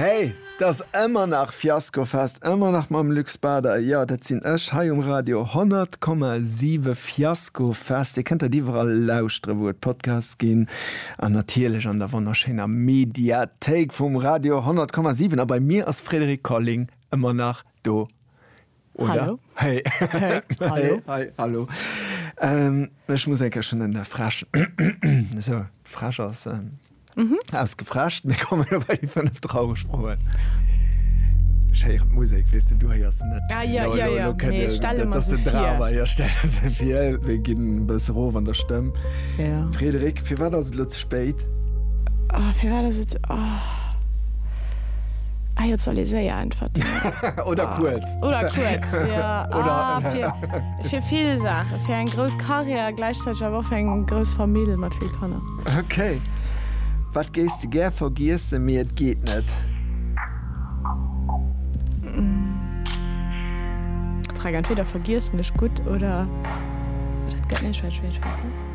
Hey, t'ass ëmmer nach Fiaskofest, ëmmer nach mam Luc Bader. Jo, dat sinn ech hei um Radio 100,7. Fiaskofest, Dir kënnt dat iwwerall lauschtere wou et Podcasts ginn an natierlech an der wonnerschéiner Mediathéik vum Radio 100,7. A bei mir ass Frédéric Colling ëmmer nach do. Oder? Hey. Hey. Hallo. Hey. Hallo. Ähm, ech muss enker schon den der Frasch. so, Frasch aus, ähm, mhm. ausgefrascht. Mir kommen bei die fünf traurig Frohen. Scheier Musik, weißt du, du hast net. Ah, ja, no, ja, no, ja. No, no, nee, stell das, das den Drama, ja, stell das viel. Wir gehen ein bisschen roh an der Stimme. Ja. Frederik, für was das Spéit. Oh, firwat ass et sou. Oh. Eier soll ee séier äntwerten. Oder oh. kuerz. Oder kuerz. Ja. Oder ah, fir, fir vill Sache. Fir eng grouss Karriere gleichzeitig awer fir eng grouss Familie mat vill Kanner. Okay. Wat géis de gär vergiesse mir et geet net. Frag entweder vergiessen ech gut oder. Dat gëtt net schwéi schwéi schwéi.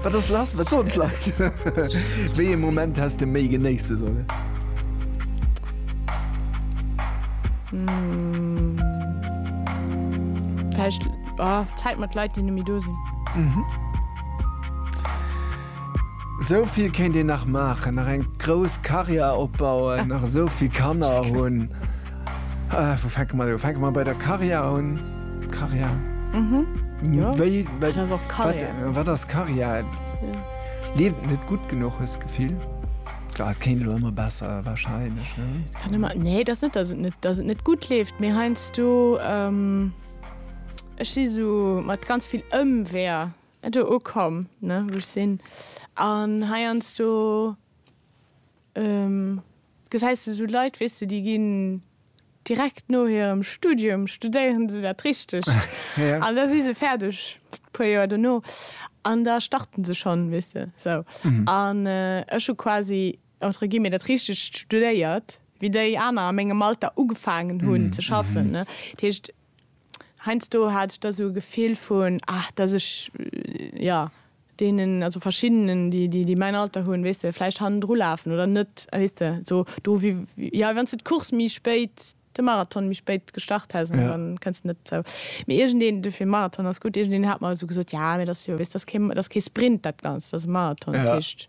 Wat ass lass? Wat soen d'Leit? Wéi ee Moment häss de méi genéisse sollen? Vläicht Zäit mat Leit, déi net méi do sinn. Esou vill kéint een nach maachen, nach eng grouss Karriär opbauen, nach esou vill Kanner hunn. Wou fänke mer un? Fänke mer bei der Karja un? Karja? Wéi? Wat ass d'Karja? Wat ass d'Karja? Leeft et net gutt genuch, hues d'Gefill? Et kéint elo ëmmer besser warscheinlech, ne? Et kann ëmmer, nee, et ass net, datt et net, datt et net gutt leeft, mee heiansdo, ech si sou mat ganz vill Ëmweeër do ukomm, ne, wou ech sinn an heiansdo. Gesäis de sou Leit, weess de, déi ginn direkt no hirem Studium, studéieren se dat Richtegt. An da si se fäerdeg, puer Joer dono. An da starten se schonn, weess de, sou. An ech hu quasi, entre guillemets, dat Richtegt studéiert, wéi déi aner a mengem Alter ugefaangen hunn ze schaffen. Dat heescht, Heinsdo hat ech da sou e Gefill vun, ah, dass ech, jo, deenen, also verschiddenen, déi, déi, déi mäin Alter hunn, weess de, vläicht hannendru lafen oder net, weess de, sou do wéi, jo, wann s de d'Course méi spéit, de Marathon méi spéit gestart häss an dann kënns de net zou. Mee iergendeen, dofir Marathon ass gutt, iergendeen hat mer sou gesot, jo, mee dat ass jo, weess de, dat ass kee, dat ass kee Sprint dat Ganzt, dat ass e Marathon, dat heescht,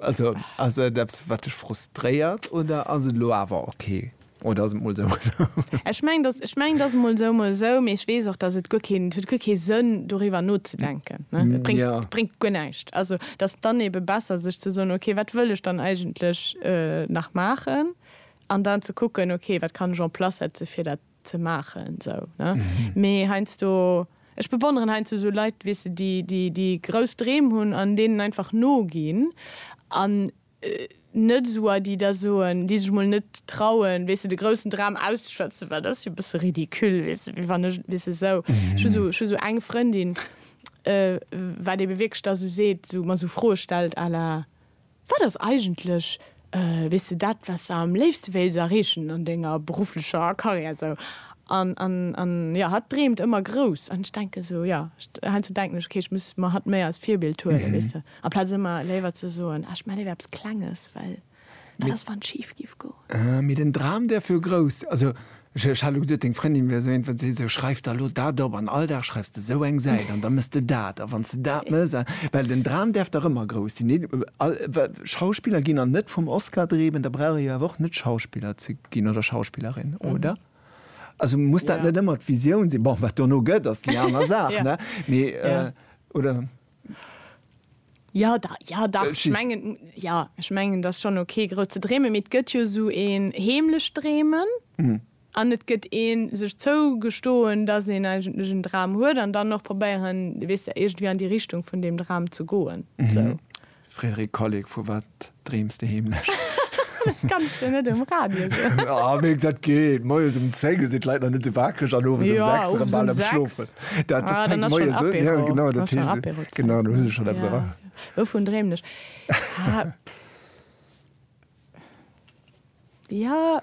Also ass et eppes wat dech frustréiert oder ass et elo awer ok oder ass et mol sou mol sou? Ech mengen dass ech mengen dass et mol sou mol sou, mee ech weess och dass et guer keen et huet guer kee Sënn doriwwer nozedenken ne, et bréngt et bréngt guer näischt. Also dass dann ebe besser sech ze soen, ok wat wëll ech dann eigentlech nach maachen an dann ze kucken, ok wat kann ech en place setze fir dat Ze maachen sou ne mee heiansdo ech bewonneren heiansdo sou Leit weess de déi déi déi grouss Dreem hunn an deenen einfach noginn an net sou a déi da soen déi sech mol net trauen weess de de groussen Dram auszeschwätzen well dat ass jo e bësse ridicule weess de wéi wann ech weess de sou ech hu sou ech hu sou eng Frëndin wat ebe wierklech da sou seet sou mer sou Froe stellt à la Wat ass eigentlech, weess de, dat, wat s de am léifste wéilts erreechen an denger berufflecher Karriär? Sou, an, an, an, jo, hatt dreemt ëmmer grouss. An ech denke sou, jo, heiansdo denken ech, okay, ech muss mer hatt méi als Virbild huelen, weess de, amplaz ëmmer léiwer ze soen, ah, ech maache léiwer eppes Klenges, well wat ass, wann et schif giff goen? Mee den Dram, däerf jo grouss, also Ech hat elo geduet deng Frëndin wär esou een, wat seet, sou schreif der elo dat op an all Dag schreifs de esou eng Säit an da mëss de dat a wanns de dat mëss a, well den Dram däerf dach ëmmer grouss sinn, deen all Schauspiller ginn an net vum Oscar dreemen, da brauch ee jo awer och net Schauspiller ze ginn oder Schauspillerin, oder? Also muss dat net ëmmer d'Visioun sinn? Bon, wat dono gëtt ass déi aner Saach, ne? Mee, oder? Ja da, ja da, äh, ech mengen ja ech mengen dat schon okay gro ze dreemen mit gëtt jo so een heemlech dreemen mhm. an net gëtt een sech zou gestoen dat een eigentlech en Dram huet an dann noch probéieren wis der egent wie an die Richtung vun dem Dram ze goen mhm. so. Frédéric Kolleg, Vu wat dreems de heemlech? Dat kanns de net um Radio soen. Oh, mee dat geet. Moies um 10 sinn d'Leit nach net esou wakereg an owes um 6 erëm bal am Schlofen. Dat ass Péng moies, oder? Jo, genau, dat heescht se. Genau, do hu se schonn eppes erraach. Wouvun dreemen ech? Ja.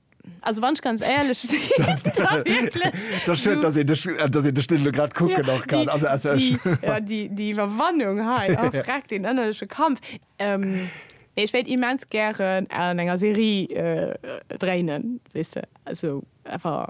Also wann ech ganz éierlech Déi Iwwerwannung hei a fräck deen ënnerleche Kampf. Ech wéilt immens gären an enger Serie dréinen, weess de, also einfach.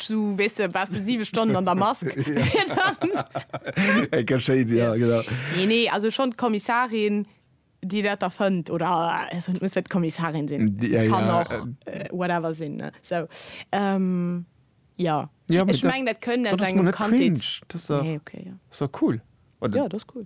Mask, so wees du, warst du sieben Stunden an der Mask. Eng Kaschéit, ja, genau. Nee, nee, also schon d'Kommissarin, déi dat erfënnt, oder, also muss net d'Kommissarin sinn, D- ja, kann ja, och äh, whatever sinn, ne, so. Ähm, ja. Ja, aber Ech dat- meng, dat kënnt dat aus ass engem mal net Kandheets... cringe. Das ist doch- Nee, okay, ja. Ist doch cool, oder? Ja, dat ass cool.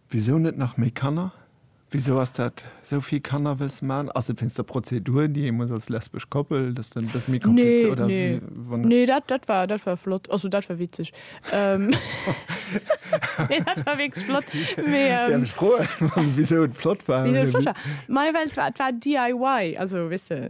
Wisou net nach méi Kanner? Wisou ass dat esou vill Kanner wëlls man? Ass et wéinst der Prozedur déi ee muss als lesbesch Koppel, dass dann e bësse méi komplizéiert oder wéi wann? Nee, dat dat war dat war flott, also dat war witzeg. Nee dat war wierklech flott mee. Däerf ech froen wisou et flott war? Wisou et flott war? Majo well et war et war DIY, also weess de.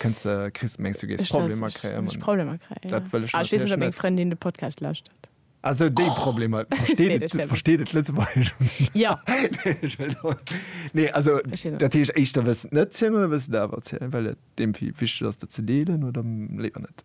Kënns de kriss mengs du géifs Problemer kréien? Ech Problemer kréien, dat wëll ech net. Ech weess net op meng Frëndin de Podcast lauschtert. Also déi Problemer versteet et Lëtzebuergesch? Jo. Nee also dat heescht éischter wëlls de et net zielen oder wëlls de et awer zielen, well et deem vill wichteg ass dat ze deelen oder léiwer net?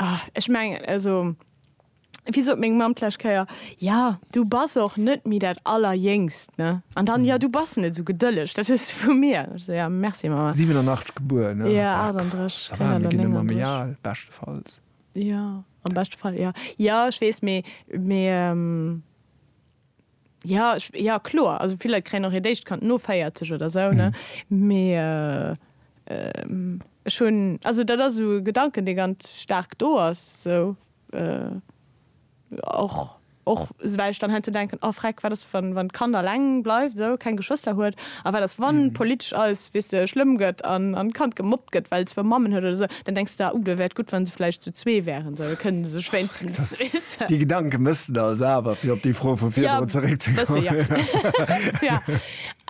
Ah, ech mengen, also, wéi sot meng Mamm d'lescht Kéier, Ja, du bass och net méi dat Allerjéngst, ne? An dann, Ja, du bass net esou gedëlleg, dat hues du vu mir. Ech sou, Ja, merci, Mamma. 87 gebuer, ne? Jo, 38, Ça va, mir ginn ëmmer méi al, beschtefalls. Jo, am beschte Fall, jo. Jo, ech weess, mee, mee, Ja, ech, ja kloer, also vill Leit kréien och hiert éischt Kand no 40 oder sou, ne? Mee ech hunn, also dat ass esou e Gedanken, dee ganz staark do ass, sou och, och well ech dann heiansdo denken, oh freck, wat ass wann, wann d'Kand alleng bleift, sou keng Geschwëster huet, a wat ass wann politesch alles, weess de, schlëmm gëtt an d'Kand gemobbt gëtt, well zwou Mammen huet oder sou. Dann denks de, uh, da wär et gutt, wa se vläicht zu zwee wären, esou, da kënnen se sech wéinstens rissen. Déi Gedanke mëss de also awer, fir op déi Fro vu virdrun zeréckzekommen. Ja, e bësse, jo.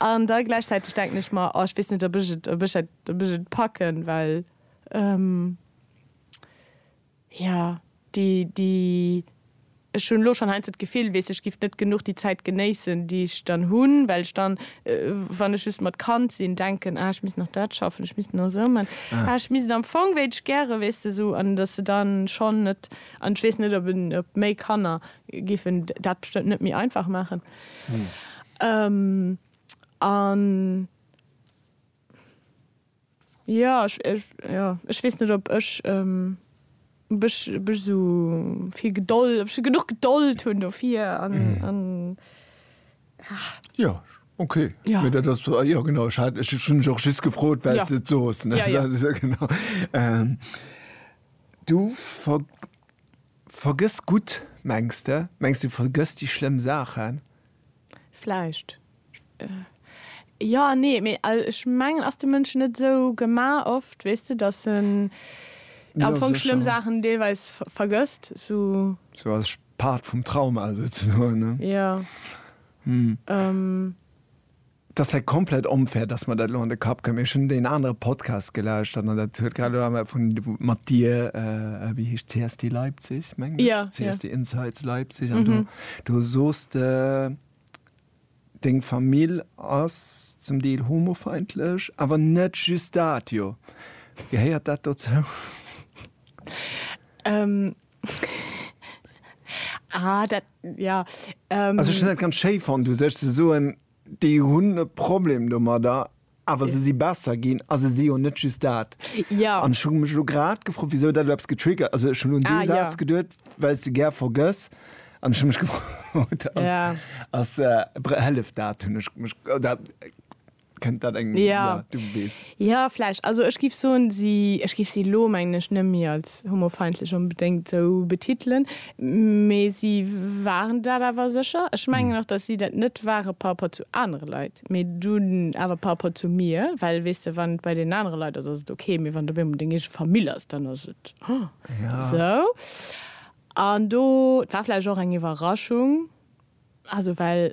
An da gläichzäiteg denken ech mer, oh, ech weess net, ob ech et, ob ech et, ob ech et packen, well, ähm, jo, déi, déi. Ech hunn elo schonn heiansdo d'Gefill, weess ech giff net genuch déi Zäit genéissen, déi ech dann hunn, well ech dann, wann ech just mat Kand sinn, denken, ah ech misst nach dat schaffen, ech misst nach esou man, ah ech misst am Fong wéilt ech gäre, weess de, esou. An datt se dann schonn net, an ech weess net, ob méi Kanner giffen dat bestëmmt net méi einfach maachen. An. Jo, ech, ech, jo, ech weess net op ech, ähm, ob ech, ob ech esou vill Gedold, ob ech genuch Gedold hunn dofir an, an, ah. Jo, ok. Jo. Mee dat ass, jo genau, ech hat, ech hunn dech och just gefrot, well s de et sos, ne? Jo, jo. Sou, genau. Ähm, du ver, vergëss gutt, mengs de? Mengs de, du vergëss déi schlëmm Saachen? Vläicht. Jo an nee. Mee ech mengen, ass de Mënsch net esou gemaach oft, weess de, datt en am Fong schlëmm Saachen deelweis vergësst? Sou als Part vum Trauma souzesoen? Jo. Et ass vläit komplett onfair, dass mer dat elo an de Kapp kréien, mee ech hunn deen anere Podcast gelauschtert an dat huet grad elo awer vun, mat dir, äh, wéi heescht, CSD Leipzig, mengen ech? Ja, ja. CSD Insights Leipzig an do, do soos de, deng Famill ass zum Deel homofeindlech, awer net just dat, jo? Gehéiert dat dozou? Ah, dat, ja. Ähm, also, ich hun dat ganz schéi fand, u sech ze soen, déi hunn e Problem domadder, awer se si besser ginn a se si jo net just dat. Ja. An ech hu mech elo grad gefrot, wisou dat elo eppes getriggert, also ech hunn un dee ah, Saz ja. geduet, well s de gär vergëss. An ech hu mech gefrot, ass, ja. ass, äh, hëlleft dat, hunn ech mech, dat, Kennt dat eng? Ja. ja du wees. Ja, vläch. Also ech gif soen, si, ech gif si lo menglech net méi als homofeindlech onbedéngt sou betitelen, mee si waren dat awer sécher. Ech mengen och, datt si dat net ware par rapport zu anere Leit, mee dunn awer par rapport zu mir. Well, weess de, wann et bei deenen anere Leit ass, ass et ok, mee wann et op eemol deng eege Famill ass, dann ass et sou. An do, et war vläch och eng Iwwerraschung, also well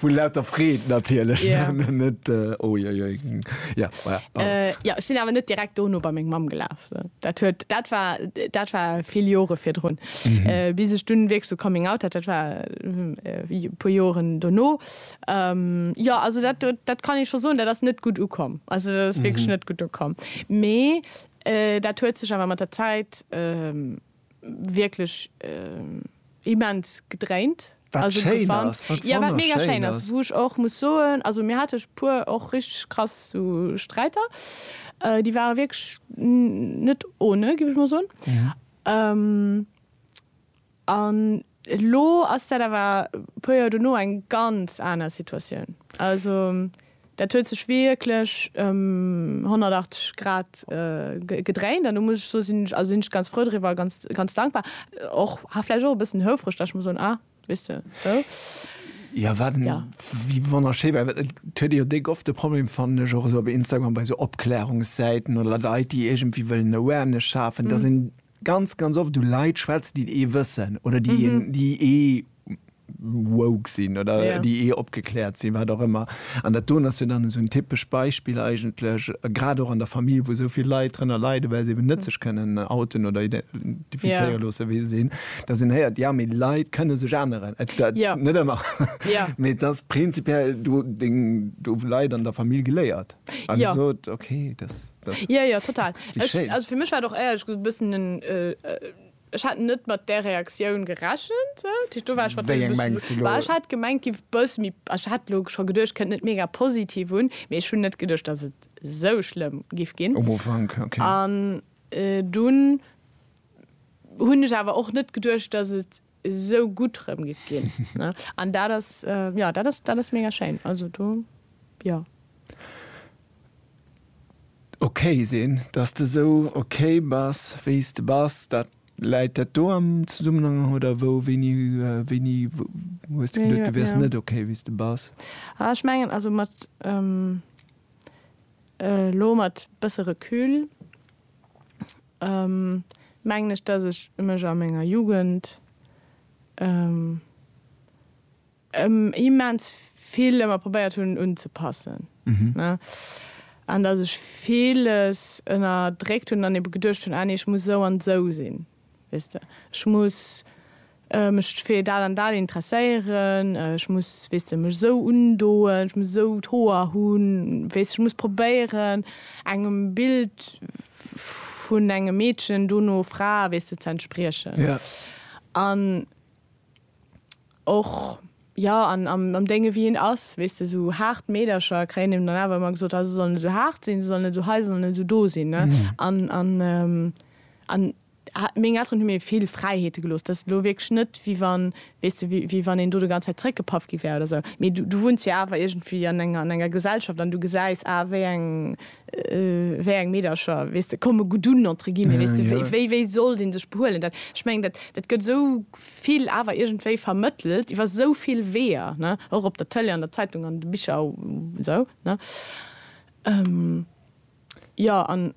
Vu lauter Freed natierlech. Ja. Net, äh, oiuiui. Ja, voilà, pardon. Äh, ja, ech sinn awer net direkt dono bei meng Mamm gelaf. So. Dat, huet, dat, war, dat war vill Jore virdrun. Mhm. Äh, bis ech dunn wierklech so Coming Out hat, dat war äh, puer Joren dono. Ähm, ja, also dat, dat kann ich scho soen, dat ass net gutt ukomm. Also dat ass mhm. wierklech net gutt ukomm. Mee äh, dat huet sech awer mat der Zäit. Äh, wierklech immens gedréint. Wat schéin ass, wat wonnerschéin ass. Wou ech och muss soen, also mir hate puer och richteg krass sou Sträiter, déi ware wierklech net ohne, giff ech mol soen. An Elo ass dat awer e puer Joer dono eng ganz aner Situatioun. Also dat huet sech wierklech ëm 180 Grad gedréint an do muss ech soe sinn ech, also sinn ech ganz frou driwwer a ganz, ganz dankbar. Och, ha vläicht och e bëssen houfreg, datt ech muss soen, ah, wéist de, sou. Jo, wat en, wéi wonnerschéi war, well et huet ee jo déck oft de Problem, fannen ech och esou op Instagram, bei esou Opklärungssäiten oder Leit, déi iergendwéi wëllen Awareness schafen, datt een Ganz, ganz oft hu Leit schwätzen, déi ee wëssen oder déi een, déi ee woke sinn oder déi ee opgekläert sinn, wat och ëmmer. An dat doen ass jo dann esou en typescht Beispill eigentlech, grad och an der Famill, wou esou vill Leit drënner leiden, well se eben net sech kënnen outen oder identifizéiere loosse wéi se sinn, dass een héiert, jo, mee Leit kënne sech änneren. Net ëmmer, mee et ass prinzipiell do, do hu Leit an der Famill geléiert a gesot, okay, dass. Ja, ja, total. Ech, also fir mech war och ehrlech gesot e bëssen en, ech hat net mat där Reaktioun gerechent. Do war ech wat. Wéi eng mengs de elo? Ech hat gemengt giff bësse méi, ech hat elo scho geduecht kënnt net mega positiv un, mee ech hunn net geduecht dass et esou schlëmm giff ginn. Um Ufank, ok. An dunn hunn ech awer och net geduecht dass et esou gutt rëm gëtt ginn ne an dat ass jo dat ass dat ass mega schéin also do jo. Ok sinn, dass de esou ok bass wéi s de bass, dat läit dat do am Zesummenhang oder wou wéini wéini hues de geduet du wäers net ok wéi s de bass? Ah ech mengen also mat elo mat bësse Recul mengen ech dass ech mech a menger Jugend immens vill ëmmer probéiert hunn unzepassen an dass ech villes ënnerdréckt hunn an ebe geduecht hunn, ah nee ech muss esou an esou sinn, weess de, ech muss Mech fir dat an dat interesséieren, ech muss, weess de, mech esou undoen, ech muss esou d'Hoer hunn, weess de, ech muss probéieren, engem Bild vun engem Meedchen, dono Fra, weess de, ze entspriechen. An och, jo, an am Dénge wéi hien ass, weess de, esou haart Meedercher kréien him dann awer ëmmer gesot, ha se sollen net esou haart sinn, se sollen net esou hei, se sollen net esou do sinn. An, an, an. Meng Elteren hu mir vill Fräiheete gelooss. Dat ass elo wierklech net, wéi wann, weess de, wéi wann een do de ganz Zäit zeréckgepaff gi wär oder esou. Mee du wunns jo awer iergendwéi an enger, an enger Gesellschaft an du gesäis, ah, wéi eng, wéi eng Meedercher, weess de, komme gutt un, entre guillemets, weess de, wéi, wéi sollt ee sech behuelen. Dat, ech mengen, dat, dat gëtt esou vill awer iergendwéi vermëttelt iwwer esou vill Weeër, ne, och op der Tëlee, an der Zeitung, an de Bicher a esou, ne. Jo, an.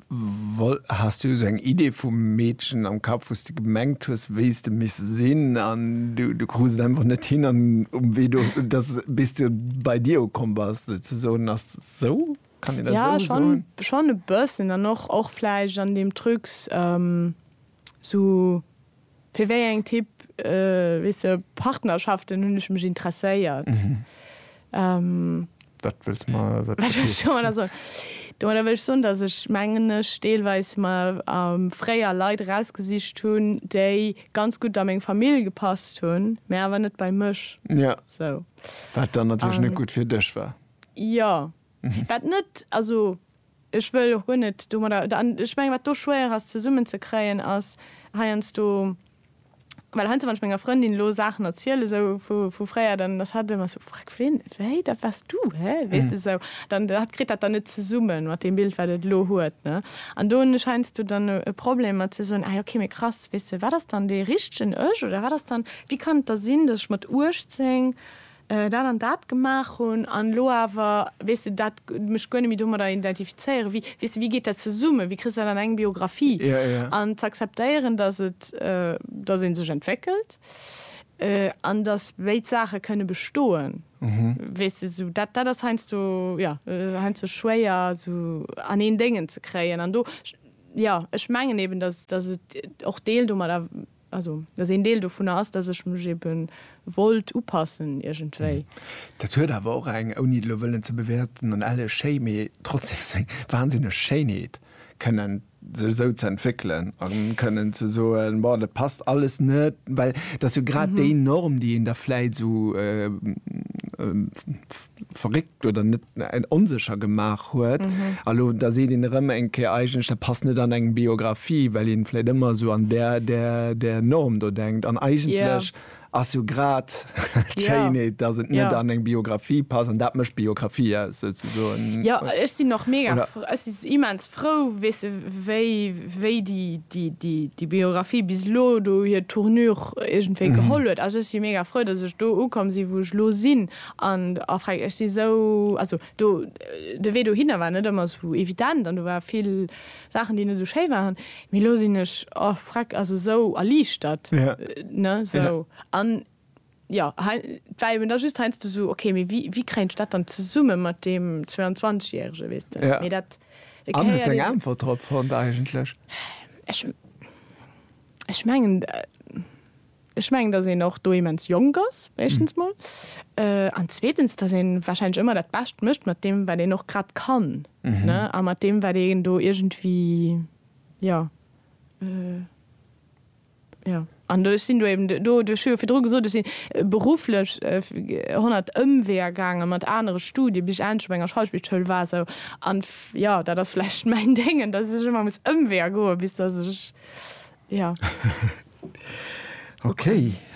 Wol, has du esou eng Idee vum Meedchen am Kapp, wou s de gemengt hues, wéi s de misst sinn, an du, du krus et einfach net hin, an um Wee do, dass, bis du bei dir ukomm bass, souzesoen? Ass dat esou? Kann een dat Ja, esou schonn, soen? schonn e bëssen, an och, och vläicht an deem Trucs, esou. Fir wéi eng Typ, weess de, Partnerschaften hunn ech mech interesséiert. Wat wëlls de mer do domadder soen? Domadder wëll ech soen, dass ech, mengen ech, deelweis mer fréier Leit erausgesicht hunn, déi ganz gutt a meng Famill gepasst hunn, mä awer net bei mech. Jo, wat dann natierlech net gutt fir dech war. Jo, Wat net, also ech wëll och guer net domadder, an ech menge wat do schwéier ass zesummen ze kréien ass heiansdo, well heiansdo wann ech menger Frëndin elo Saachen erzielen esou vu fréier, dann ass hatt ëmmer esou, Freck, ween, wéi, dat waars du, hä, weess de esou, dann hatt kritt dat dann net zesummen mat deem Bild wat et elo huet, ne. An do hunn ech heiansdo dann e Problem mat ze soen, ah jo, okay, mee krass, weess de, wat ass dann dee richtegen Ech oder wat ass dann, wéi kann et da sinn, datt ech mat 18 dat an dat gemaach hunn an elo awer, weess de, dat, mech guer net méi domadder identifizéieren, wéi, weess de, wéi geet dat zesummen, wéi kriss de dat an eng Biographie? An z'akzeptéieren, datt et, datt ee sech entwéckelt an datt béid Saache kënne bestoen, weess de, esou dat, dat ass heiansdo, jo, heiansdo schwéier esou an een Déngen ze kréien an do, jo, ech mengen eben, datt et och Deel domadder. Also, dass een Deel dovunner ass, dass ech mech ebe wollt upassen iergendwéi. Dat huet awer och eng, ouni et elo wëllen ze bewäerten, an elle schéi, mee trotzdem seng wahnsinneg Schéinheet, kënnen sech esou ze entwéckelen a kënnen ze soen, Bon, dat passt alles net. Well dat ass jo grad déi Norm, déi een da vläicht esou verréckt. oder net onsécher gemaach huet a lo da seet een erëm eng Kéier, eigentlech dat passt net an eng Biographie, well een vläit ëmmer esou an där, där, där Norm do denkt an eigentlech ass jo grad d'Schéinheet, dass et net an eng Biographie passt an dat mécht d'Biographie aus souzesoen. Jo, ech sinn och mega, ech si immens frou, weess de, wéi, wéi déi, déi, déi, déi Biographie bis elo do hir Tournure iergendwéi geholl huet. Also ech si mega frou, dass ech do ukomm sinn, wou ech elo sinn. An a freng, ech si sou, also do, de Wee dohinner war net ëmmer sou evident an do ware vill Saachen, déi net sou schéi waren, mee elo sinn ech a freg, also sou erliichtert, ne, sou. An jo, hei, et war eben da just heiansdo sou, ok, mee wéi, wéi kréien ech dat dann zesumme mat deem 22 Järege, weess de, mee dat, et gehéiert eben. An hues de eng Äntwert drop fonnt eigentlech? Ech, ech mengen. Ech mengen, dass een och do immens jonk ass, éischtens mol, an zweetens, dass ee warscheinlech ëmmer dat Bescht mécht mat deem, wat een och grad kann, ne, a mat deem, wat een do iergendwéi, jo, jo. An ech sinn do eben do, ech hu jo virdru gesot, ech si berufflech honnert Ëmweeër gaangen, mat anere Studien, bis ech endlech op enger Schauspielschoul war, sou, an, jo, dat ass vläicht mäin Déngen, dass ech ëmmer muss Ëmweeër goen, bis dass ech. Ja. Ok,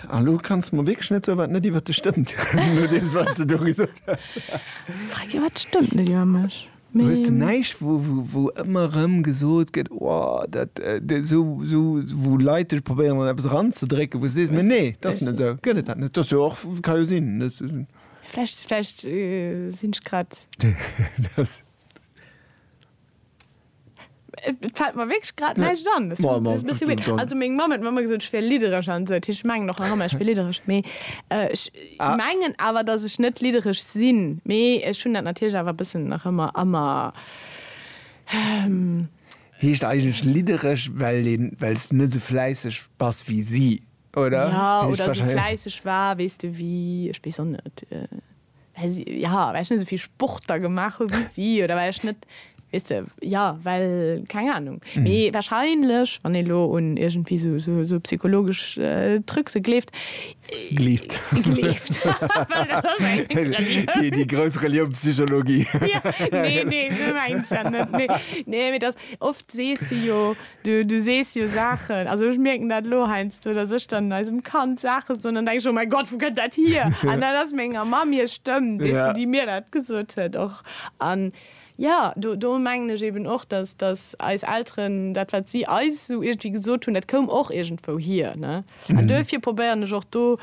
a lo kanns de mer wierklech net soen, wat net iwwer dech stëmmt, no deem, wat s de do gesot hues. Frag jo, wat stëmmt net iwwer mech? Du hues de näischt, wou, wou, wou ëmmer erëm gesot gëtt, o, dat, dat esou, esou, wou Leit dech probéieren, an eppes eranzedrécken, wou s de sees, mee nee, dat ass net esou. Gëtt et dat net? Dat ass jo och, ka jo sinn, dat. Vläicht, vläicht sinn ech grad. Dat. Et fällt mer wierklech grad näischt an. Das war das bisschen weird. Also meng Mamm huet mer ëmmer gesot, ech wier liddereg an esou. Ech mengen och nach ëmmer, ech wier liddereg. Mee ech mengen awer, dass ech net liddereg sinn. Mee ech hunn dat natierlech awer e bëssen nach ëmmer a mer. Heescht eigentlech liddereg, well een, well s de net esou fläisseg bass wéi si, oder? Ja, oder esou fläisseg war, weess de wéi, ech weess och net. Well si, ja, well ech net esou vill Sport da gemaach hu wéi si, oder well ech net, weess de, ja, well, keng Anung. Mee wahrscheinlech, wann ee lo un iergendwéi sou, sou, sou psychologesch Trucse gleeft, Gleeft. gleeft, well dat ass eng Relioun. Déi grouss Relioun Psychologie. Nee, nee, sou mengt ech dat net. Mee, nee, mee dass, oft sees de jo, Du, du sees jo Saachen, also ech mierken dat elo heiansdo, datt ech dann eisem Kand Saache soen, dann denke ech, oh mäi Gott, wou kënnt dat hier? An dat ass menger Mamm hir Stëmm, weess de, déi mir dat gesot huet och. An jo, do, do mengen ech eben och, datt, datt eis Elteren, dat wat si eis esou iergendwéi gesot hunn, dat koum och iergendwou hier, ne? An duerfir probéieren ech och do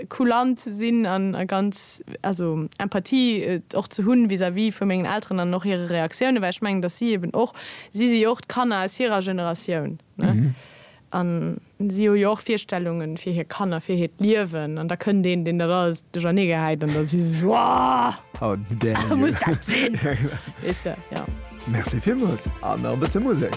kulant ze sinn a ganz, also Empathie och ze hunn vis-à-vis vu mengen Elteren an och hire Reaktiounen, well ech mengen, datt si eben och, si si jo och d'Kanner aus hirer Generatioun, ne, an si hu jo och Virstellungen fir hir Kanner, fir hiert Liewen. An da kënnt een, deen dat alles duercherneegehäit an da si se sou, How dare you! Muss dat sinn? Weess de, jo. Merci villmools, an nach e bësse Musek.